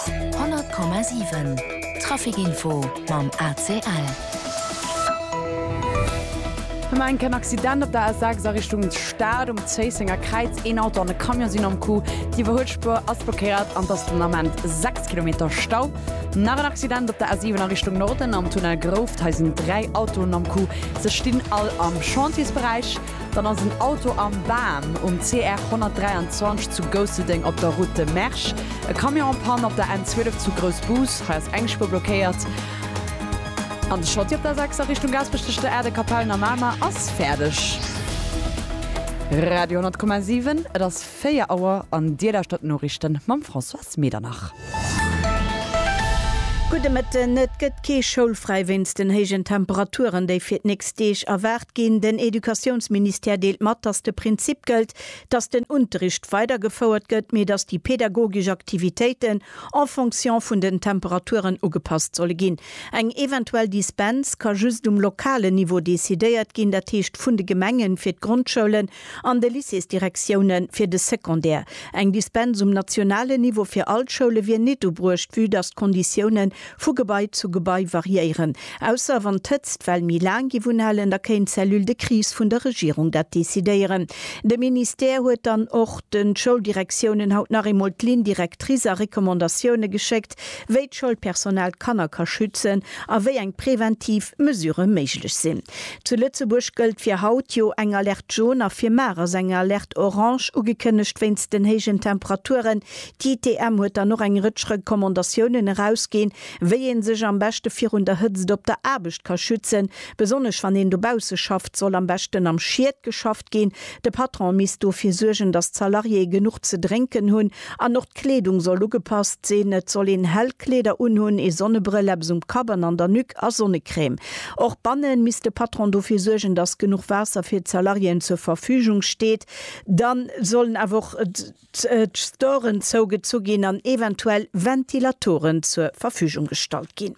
100,7 Trafic Info mam ACL. Hu mer enk en Accident op der A6 a Richtung Stad um Zéissenger Kräiz. Een Auto an e Camion sinn am Coup. D'Iwwerhuelspuer ass blockéiert an et ass den Ament 6 Kilometer Stau. Nach en Accident op der A7 a Richtung Norden am Tunnel Grouft. Hei sinn dräi Autoen am Coup. Se stinn all am Chantiersberäich. Dann ass en Auto am Bam um CR 123 zu Gousseldeng op der Route de Mersch. E Camion en Panne op der N 12 zu Groussbus, hei ass eng Spuer blockéiert. An de Schotti op der 6 a Richtung Gaasperech tëscht der Aerde Kapellen a Mamer ass fäerdeg. Radio 10,7 Et ass 4 Auer an Dir lauschtert d'Noriichten mam Françoise Medernach. Gudde Mëtten. Et gëtt kee schoulfräi wéinst den héijen Temperaturen, déi fir d'nächst Deeg erwaart ginn. Den Educatiounsministère deelt mat, datt de Prinzip gëllt, datt den Unterricht weidergefouert gëtt, mee datt déi pedagogesch Aktivitéiten en fonction vun den Temperaturen ugepasst solle ginn. Eng eventuell Dispens ka just um lokalen Niveau decidéiert ginn, dat heescht vun de Gemengen, fir d'Grondschoulen An de Lycéesdirektioune fir de Secondaire. Eng Dispens um nationalen Niveau fir all d'Schoule wier nit ubruecht, vue datt d'Konditioune vu Gebai zu Gebai variéieren. Ausser wann d'Hëtztwell méi laang géif unhalen, da kéint d'Cellule de crise vun der Regierung dat decidéieren. De Ministère huet dann och de Schouldirektiounen haut nach eemol d'Ligne directrice a Recommandatioune geschéckt. Aspekt, wéi d'Schoulpersonal d'Kanner ka schützen a wéi eng preventiv Mesure méiglech sinn. Zu Lëtzebuerg gëllt fir haut jo eng Alerte jaune a fir mar ass eng Alerte orange ugekënnegt wéinst den héijen Temperaturen. D'ITM huet dann och eng Rëtsch Recommandatiounen erausginn, wéi ee sech am beschte virun der Hëtzt op der Aarbecht ka schützen. Besonnesch wann een dobausse schafft, soll am beschten am Schied geschafft ginn. De Patron misst dofir suergen, datt d'Salariéë genuch ze drénken hunn An och d'Kleedung soll ugepasst sinn. Et soll een hell Kleeder unhunn, ee Sonnebrëll, eppes um Kapp an an der Nuque a Sonnecrème. Och bannen misst de Patron dofir suergen, dass genuch Waasser fir d'Salariéen zur Verfügung steet. Dann sollen awer och d'Storen zougezu ginn an eventuell Ventilatoren zur Verfügung gestallt ginn.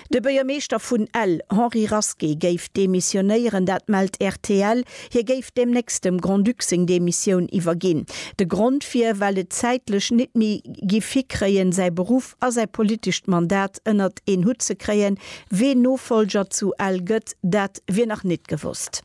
De Buergermeeschter vun Ell, Henri Rasqué, géif demissionéieren, dat mellt rtl. Hie géif deemnächst dem Grand-Duc seng Demissioun iwwerginn. De Grond wier, well et zäitlech nit méi giff hikréien, säi Beruff a säi politescht Mandat ënnert een Hutt ze kréien. Ween Nofollger zu Ell gëtt, dat wier nach nit gewosst.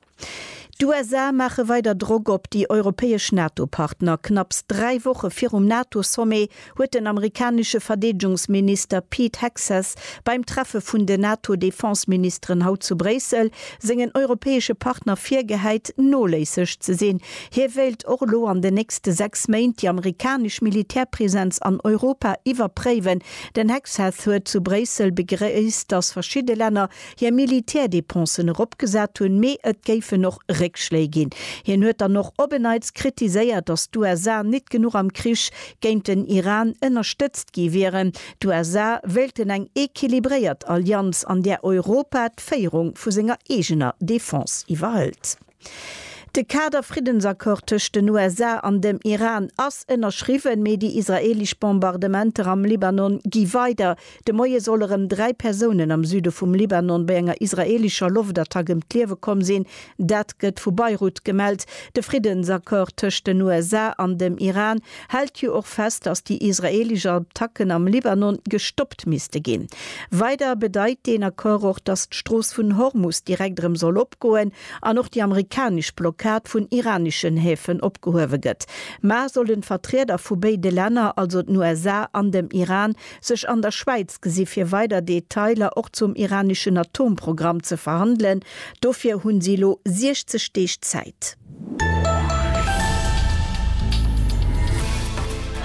D'USA maache weider Drock op déi europäesch NATO-Partner. Knapps dräi Woche virum NATO-Sommet huet den amerikanesche Verdeedegungsminister Pete Hegseth beim Treffe vun den NATO-Defenseministeren haut zu Bréissel sengen europäesche Partner virgehäit, noléisseg ze sinn. Hie wéilt och elo an den nächste sechs Méint déi amerikanesch Militärpresenz an Europa iwwerpréiwen. Den Hegseth huet zu Bréissel begréisst, datt verschidde Länner, hir Militärdepensen eropgesat hunn, mee et géifen och Réckschléi ginn. Hien huet dann och op en Neits kritiséiert, datt d'USA nit genuch am Krich géint den Iran ënnerstëtzt gi wieren. D'USA wéilten eng equilibréiert Allianz, an där Europa d'Féierung vu senger eegener Defense iwwerhëlt. De Kader-Friddensaccord tëscht den USA an dem Iran ass ënnerschriwwen, mee déi israeelesch Bombardementer am Libanon gi weider. De Moie solle rëm dräi Persounen am Süde vum Libanon bei enger israeelescher Loftattack ëm d'Liewe komm sinn. Dat gëtt vu Beirut gemellt. De Friddensaccord tëscht den USA an dem Iran hält jo och fest, datt déi israeelesch Attacken am Libanon gestoppt misste ginn. Weider bedeit deen Accord och, datt d'Strooss vun Hormus direkt erëm soll opgoen an och déi amerikanesch Blockad vun iraneschen Häfen opgehuewe gëtt. Mar et sollen d'Vertrieder vu béide Länner, also den USA an dem Iran, sech an der Schwäiz gesi fir weider Detailer och zum iraneschen Atomprogramm ze verhandelen. Dofir hu si elo 60 Deeg Zäit.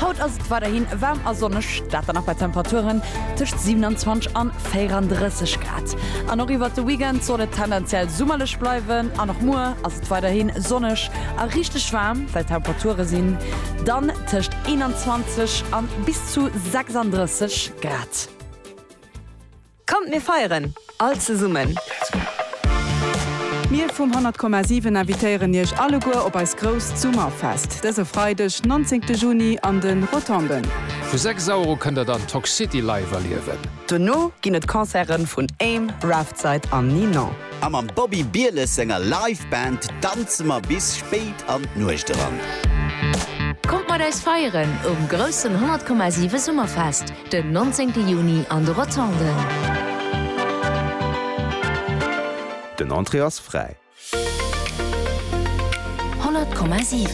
Haut ass et weiderhin waarm a sonneg, dat dann och bei Temperaturen tëscht 27 an 34 Grad. An och iwwert de Weekend soll et tendenziell summerlech bleiwen an och muer ass et weiderhin sonneg a richteg waarm, well d'Temperature sinn dann tëscht 21 a bis zu 36 Grad. Kommt mir feieren all zesummen! Mir vum 100,7 invitéieren iech alleguer op eist grousst Summerfest dëse Freideg 19 Juni an de Rotonden. Vu 6 Auer u kënnt der dann Toxcity live erliewen. Dono ginn et Concerten vun Aim, Raftside an Ninon. A mam Bobby Bieles senger Live Band danze mer bis spéit an d'Nuecht eran. Kommt mat eis feieren um groussen 100,7 Summerfest! Den 19 Juni an de Rotonden. Den Entrée ass fräi. 100,7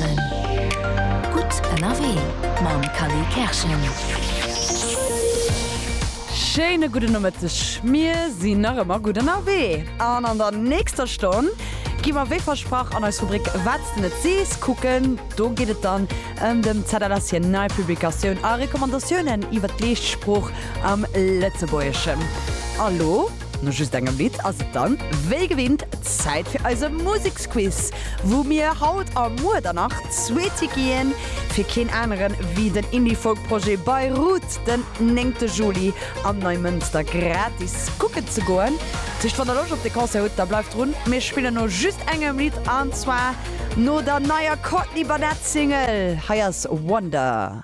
Gutt ënnerwee mam Kally Kerschen. Schéine gudden Nomëtteg. Mir sinn nach ëmmer gutt ënnerwee an an der nächster Stonn gi mer wéi versprach an eis Rubrik Wat s de net sees kucken. Do geet et dann An dem Zettel ass hir nei Publikatioun a Recommandatiounen iwwer d'leescht Sprooch am Lëtzebuergeschen. A lo, no just engem Lidd, ass et dann, wéi gewinnt, Zäit fir eise Museksquiz, wou mir haut a muer dann nach zwee Tickete ginn, fir keen aneren ewéi den Indie-Folk-Projet Beirut den néngte Juli am Neimënster gratis kucken ze goen. Dat heescht, wann der Loscht op de Concert hutt, da bleift drun, mir spillen no just engem Lidd, an zwar. no der neier Courtney Barnett Single, hei ass Wonder.